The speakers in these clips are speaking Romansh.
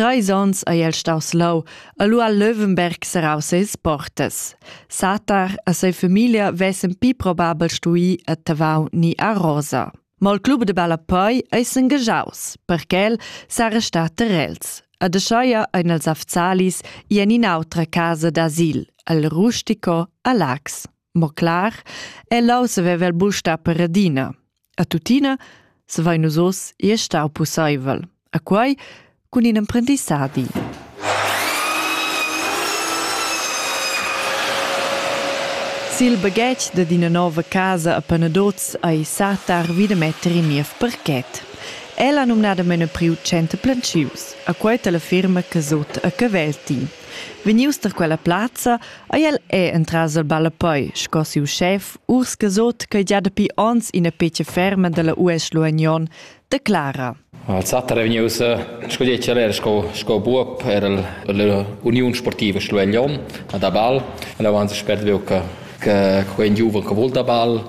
Treis onns ei el staus leu e lu ha Löwenberg serrau seis portas. Satar e sa famiglia vessen pli probabel stui a Tavau ni a Rosa. Ma il club de ballapei ei s'engaschaus, perché el s'ha restat ter els. Ad Aschaia ein els Afzalis i en in'autra casa d'asil, al Rustico a Lax. Mo clar, el leu saveva il bus star per Radina. A tuttina savein nus oz ir stau pusseivel, a quei cun in emprendissadi. Sil baghetg dad ina nova casa a Panadoz ei satar vi da metter in niev parket. El ha numnadamain priu center plantschius, a quei la firma Casot a Cavelti. Vegnius da quella plazza Ei el è entras il ballapoi sco siu schef urs gesot ch'ei gia dapi onns ina pecia ferma dalla US Luagnon declara. Alzata è vegnius sco declerer sco, sco buob era l'Uniun Sportiva Schlueglion da ball. E là avanza spert veu che, che quei giuven che vul da ball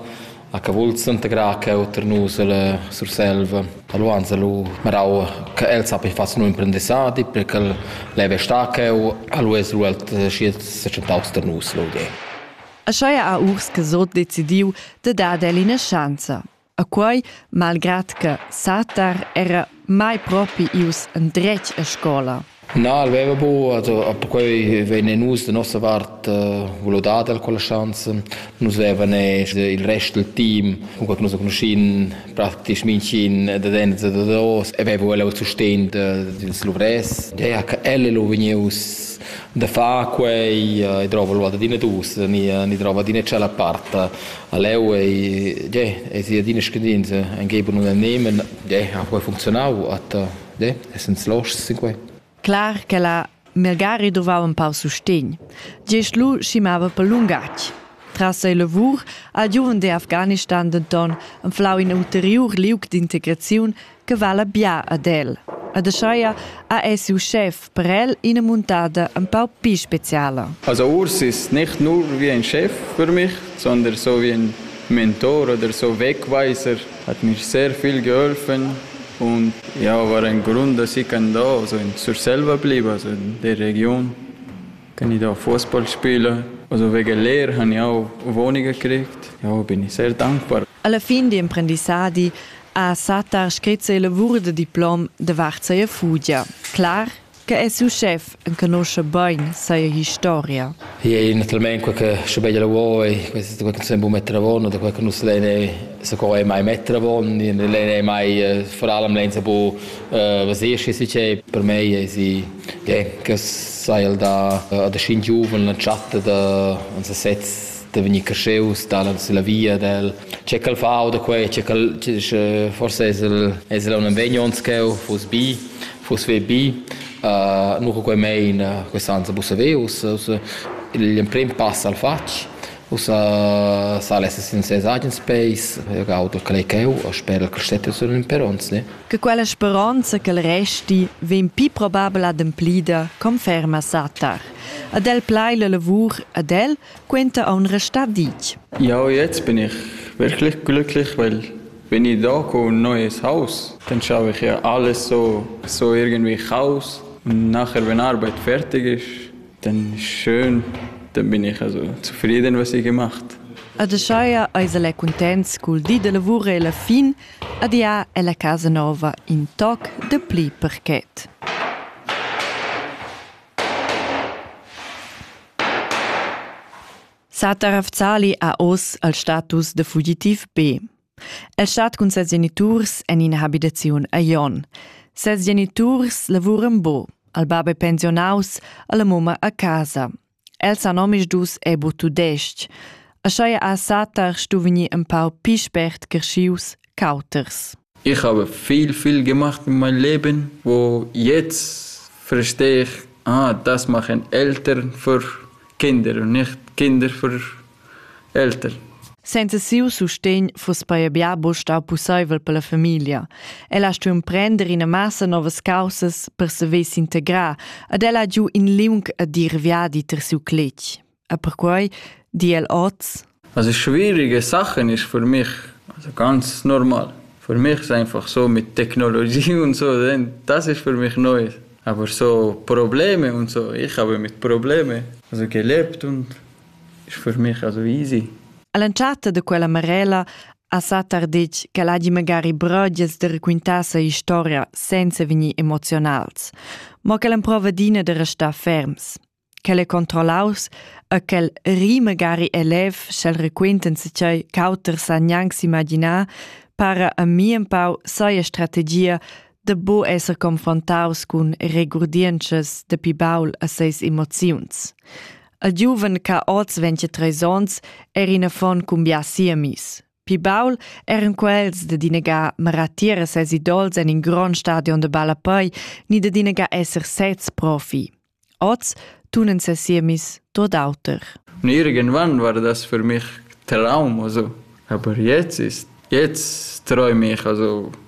A cavulz integrar cheu tar nus ella Surselva, a Luanza lu Meraua, che el sappi far siu imprendissadi, per ch'el leva star cheu, a lu es lu el schi secentaus tar nus, vul dir. Aschia ha Urs Casot decidiu de dar el ina schanza. A quei, malgrad che Satar era mai propi ius endretg a scola? Na, el veva bu, perquei vegnin nus da nossa vart volo dad el quella schanza. Nus vevan il rest del team, cunquei che nus conoscin praktisch minchin da dent e da dos, e veva el sustegn dils luvrès. Gea che el lo vegnius da far quei e drova lo ad adina dus, ni, ni drova adina tschella part A leu ei, es sia adina scadinza, anche per non annehmen, ha quei funzionau, atta, essens loschs sin quei. Clar che la Melgari dovau in pau sustegn. Gest lu schimava per lungatg. Tras ei lavur al giuven de Afghanistan denton enflau in ulteriur liug d'integraziun che vala bia ad el. Ed ascheia ha ei siu schef per el ina muntada empau pli speciala. Also urs ist nicht nur wie ein Chef für mich, sondern so wie ein Mentor oder so Wegweiser. Hat mir sehr viel geholfen und ja, war ein Grund, dass ich kann da also zur selber bleiben, also in der Region. Kann ich da Fußball spielen? Also wegen Lehre habe ich auch Wohnungen gekriegt. Ja, bin ich sehr dankbar. Alla fin d'emprendissadi ha Sattar scrit ses lavur da diplom davart sia fugia. Clar che è suo chef enconosce bain sia historia. Io naturalmente quel che sche bella vuoi, questa quel che sempre mettere a buono, da quel che non se lei se coi mai mettere a buono, lei è mai vor allem lenza bu was ich si per me è si Ja, che sai da da schin giuven la chatta da uns sez da vegnir cresceus dalla la via del che cal fa o da quei che cal che forse es el es el un impegno uns cheu fuss bi fuss ve bi nu co quei mein questa anza busaveus l'emprim pass al fatg usa sa less in ses agen space ga auto clay cheu o sper il crescetto sun in perons ne che quella speronza ch'el resti vegn pli probabel ademplida, conferma Satar. Ad el plai la lavur ad el quenta aun restar ditg. Ja, jetzt bin ich wirklich glücklich, weil wenn ich da komme ein neues Haus, dann schaffe ich ja alles so, so irgendwie Chaos. Und nachher, wenn Arbeit fertig ist, dann ist schön, dann bin ich also zufrieden, was ich gemacht habe. Ad Aschaia eis el è cuntents cul di da lavur e la fin Adia è la casa nova in toc dapli parket. Satar Afzali ha oz il status da fugitiv B. El stat cun ses geniturs en ina habitaziun a Jon. Ses geniturs lavuran bo, al bab è pensionaus, alla mumma a casa. El san omisdus è bu tudestg, aschia ha Satar stu vegnir empau pli spert creschius ch'auters. Ich habe viel, viel gemacht in meinem Leben, wo jetzt verstehe ich, ah, das machen Eltern für Kinder und nicht Kinder für Elter. Senza siu sustegn fuss paia bia buc stau pusseivel per la famiglia. Ella ha stuiu emprender ina massa novas caussas per saver s'integrar ed ella ha giu in liung e dir viadi ter siu cletg. E perquei di el oz. Also schwierige Sachen ist für mich, also ganz normal. Für mich ist einfach so mit Technologie und so, das ist für mich neu. Aber so Probleme und so, ich habe mit Probleme also gelebt und Sfurmescha easy. All'entschatta da quella marella ha Satar detg ch'el hagi magari brögias da raquintar sia historia senza vegnir emozionals, mo ch'el emprova adina da restar ferms. Quel è controllaus e quel ri magari è lev sch'el raquintan se tgei ch'auters san gnanc s'imaginar, para a mi empau saja strategia da bu esser confrontaus cun regurdientschas dapi baul a seis emoziuns. Il giuven ch'ha oz 23 onns era in affon cumbià siamis. Pi baul eran quels da dinegar maratir a ses idols en in grond stadion de ballapei ni da dinegar esser sez profi. Oz tunen ses siemis tot auter. Irgendwann war das für mich Traum, also. Aber jetzt ist, jetzt träume ich, also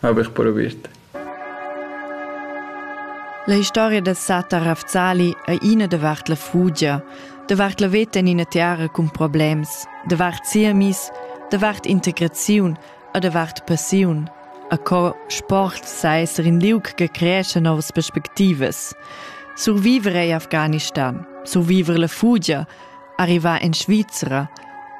haver previert. La historia del Satta Rafzali è ina davart la fugia, davart la veta in ina terra cun problems, davart siamis, davart integraziun e davart passiun. A co sport sa esser in liug che creesce novas perspectivas. Survivere in Afghanistan, survivere la fugia, arrivà en Svizra.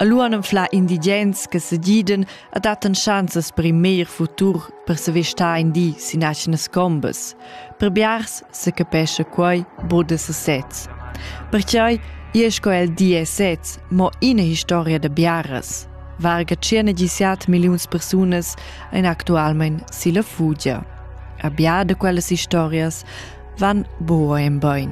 Allura anflà indigens che segiden a dattan schanzas per in meglier futur per se vestar in di sin aschenas combas. Per biars se capescha quai bod da sesez. Perciai è sco el di e sez, mo ina historia da biaras. Varga circa 17 miliuns persunas en actualment si la fugia. A biada quellas historias van boa en bain.